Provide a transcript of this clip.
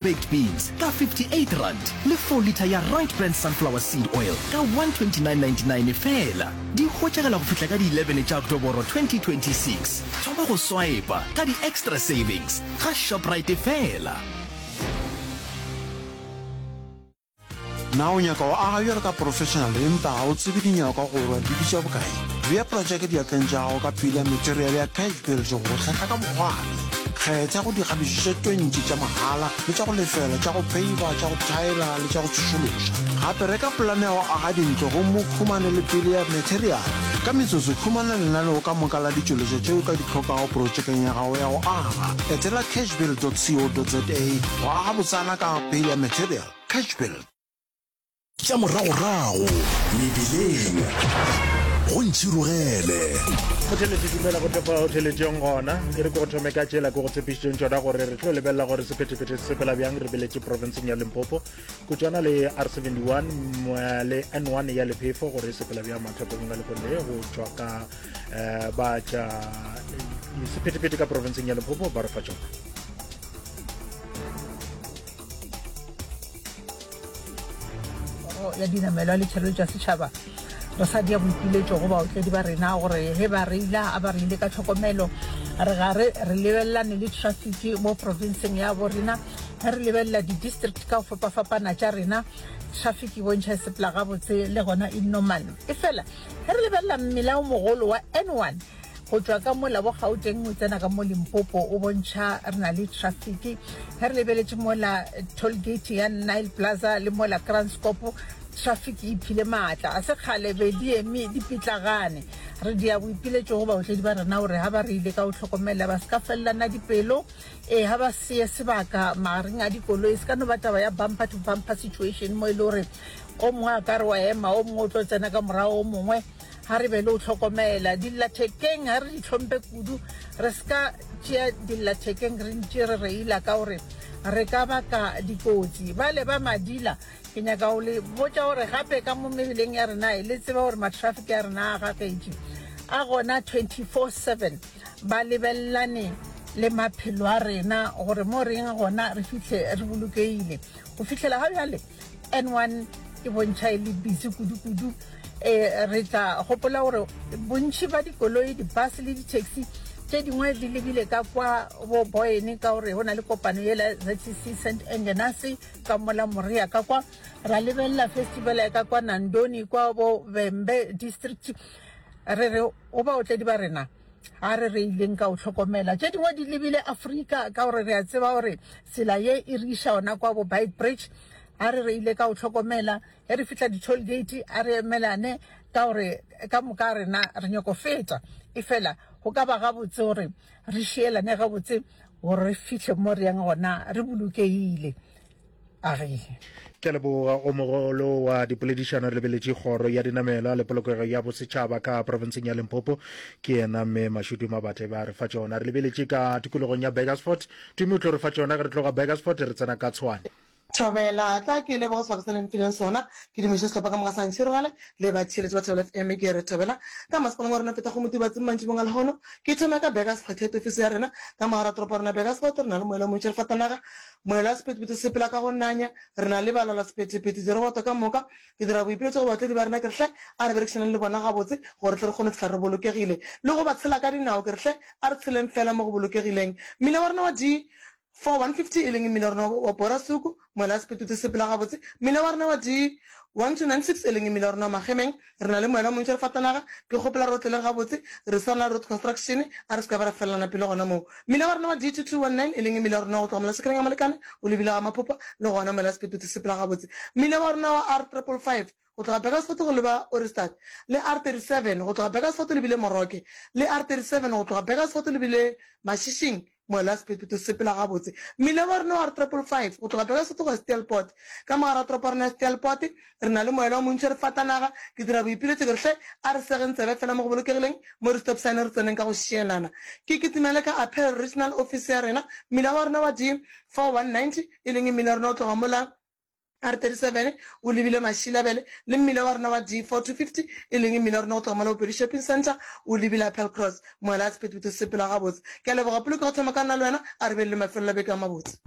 Baked beans ka 58 rand le 4 litre ya Right Brand Sunflower Seed Oil ka 129.99 feela. Di hwetšagala go fihla ka di 11 tša Oktoboro 2026. Thoma go swaepa ka di-extra savings ga Shoprite feela. Na o nyaka go aga bjalo ka professional empa ga o tsebe dinyakwa gore wa di bitša bokae? Bea projeke diatleng tša gago ka pela materiale ya cash build go hlahla ka bokgwale. Kgetha go dikga dijo tše 20 tša mahala le tša go lefela, tša go peiba, tša go thaela le tša go tsošološa. Gape reka polane ya go aga dintlo gomme o khumane le pele ya materiale. Ka metsotso khumana lenaneo ka moka la ditšweletšo tše o ka di hlokago projekeng ya gago ya go aga. Etela cashbuild.co.za. Hwa gabotsana ka Bill ya Material, Cash Bill. Tša moragorago mebileng go ntšhirogele. Gothele se dumela go thepa gotheletšeng gona e re ke go thome ka tšela ke go tshepišitšeng tšona gore re tlo lebelela gore sephetephete se sepela bjang re beletše provinceng ya limpopo kutšwana le r 71 eh, le n 1 ya lephefo gore e sepela bjang matlhakong a lekonde go tšwa ka eh, ba tša eh, sephetephete ka provinceng ya limpopo ba re fa tšona ya dinamelwa le tšhireletso ya setšhaba re sa dia boipiletšo go baotledi ba rena gore ge ba reila a ba reile ka tlhokomelo re gare re lebelelane le traffic mo provinceng ya bo rena ge re lebelela di-district ka go fapafapana tša rena traffic e bontšha e sepela gabotse le gona e normal e fela ge re lebelela mmela o mogolo wa n one Go tšwa ka mola bo Gauteng o tsena ka mo Limpopo o bontšha re na le traffic. Ge re lebeletše mola toll gate ya Nile Plaza le mola Kranskop traffic e iphile maatla. A se kgale be di eme di pitlagane. Re dia boipiletšo go baotledi ba rena gore ga ba re ile ka go hlokomela ba se ka felelana dipelo. Ee, ga ba seye sebaka magareng a dikoloi. Se ka no ba taba ya bumper to bumper situation mo e le gore o mongwe a ka re wa ema o mongwe o tlo tsena ka morago o mongwe. ga re be le o tlhokomela dillathekeng ga re di tlhompe kudu re se ka tšea dillathekeng re ntše re reila ka gore re ka baka dikotsi bale ba madila ke nyaka go le botša gore gape ka mo mebeleng ya rena le tseba gore matraffic ya rena a gaketše a gona 24/7 ba lebelelane le maphelo a rena gore mo reng gona re fitlhe re bolokegile go fitlhela ga bjale N1 e bontšha e le busy kudu-kudu. E, re tla gopola gore bontši ba dikoloi, dibase le ditaxi tše dingwe di lebile ka kwa bo Boyne ka gore go na le kopano yela ZCC St Engenase ka mola Morea ka kwa. Ra lebelela festival ya ka kwa Nandoni kwa bo Vhembe district. Re re go baotledi ba rena. A re re ileng ka o hlokomela. Tše dingwe di lebile Afrika ka gore re a tseba gore tsela ye e re iša ona kwa bo Beitbridge. A re re ile ka o hlokomela. Ge re fihla di-toll gate a re emelane ka gore ka moka rena re nyoko feta. Efela go ka ba gabotse gore re šielane gabotse gore re fihle mo re yang gona re bolokegile. agile ke leboga o mogolo wa dipoledišano re lebeletše kgoro ya dinamelwa le polokego ya bosetšhaba ka profenseng ya limpopo ke yena mme mashudu mabatle ba re fa tšona re lebeletše ka tikologong ya bakersfort tumi o tlo re fa tšona ge re tloga bakersfort re tsena ka tshwane thobela tla ke lebogo sebaka se le mfileng sona ke dumeše sehlopha ka moga sa ntšhirogale le batheeletši ba thobela fm ke re thobela ka masepaleng wa rona feta go motubatsing mantši bongwa lehono ke thome ka bakersfort head office ya rena ka mogara toropo ya rena bakersfort re na le moela o montši re fatanaga Molelo wa sephethephethe se sepela ka go nanya. Re na le balwa la sephethephethe, diroboto ka moka. Ke dira boipiletšo go baotledi ba rena ke re, Hle, a re berekišaneng le bona gabotse gore tle re kgone fihla re bolokegile. Le go ba tshela ka dinao, ke re, Hle, a re tsheleng feela mo go bolokegileng. Mmila wa rena wa D. 4-150, e leng mmila wa rena wa borasuku, molelo wa sephethephethe se sepela gabotse. Mmila wa rena wa D. 1-96, e leng mmila wa rena wa magemeng. Re na le moyana o montši re fatanaga. Ke kgopela re otleleng gabotse. Re swana road construction, a re se ka ba ra felelana pelo gona moo. Mmila wa rena wa D2219, e leng e mmila wa rena wa go tloga mola Sekereng ya Molekane, o lebile ga Maphopha, le gona moyana Sepetoto se sepela gabotse. Mmila wa rena wa R555, go tloga Bekasfort go leba Ohrigstad, le R37, go tloga Bekasfort o lebile Moroke, le R37, go tloga Bekasfort o lebile Mashishing, Moela Sepeto to sepela gabotse. Mmila wa rena wa re triple five go tloga Pelaso tsogo ya Steelpoort. Ka mo gara toropo ya rena ya Steelpoort, re na le moela o montši, re fatanaga. Ke dira boipiletšo ke re, Hle, a re segeng tsebe fela mo go bolokegileng, mo re stop sign re tseneng ka go šielana. Ke kitimele ka Appeal Regional Office ya rena. Mmila wa rena wa D four one ninety, e leng mmila wa rena o tloga mola. R37 o lebile Mashilabele le mmila wa rena wa D4-250 e leng mmila wa rena go tloga mola Bopedi Shopping Centre o lebile Appelcross. Moela a Sephetephete o sepela gabotse. Ke a leboga Polokego Thoma ka nna le wena a re be le mafelelo a beke a mabotse.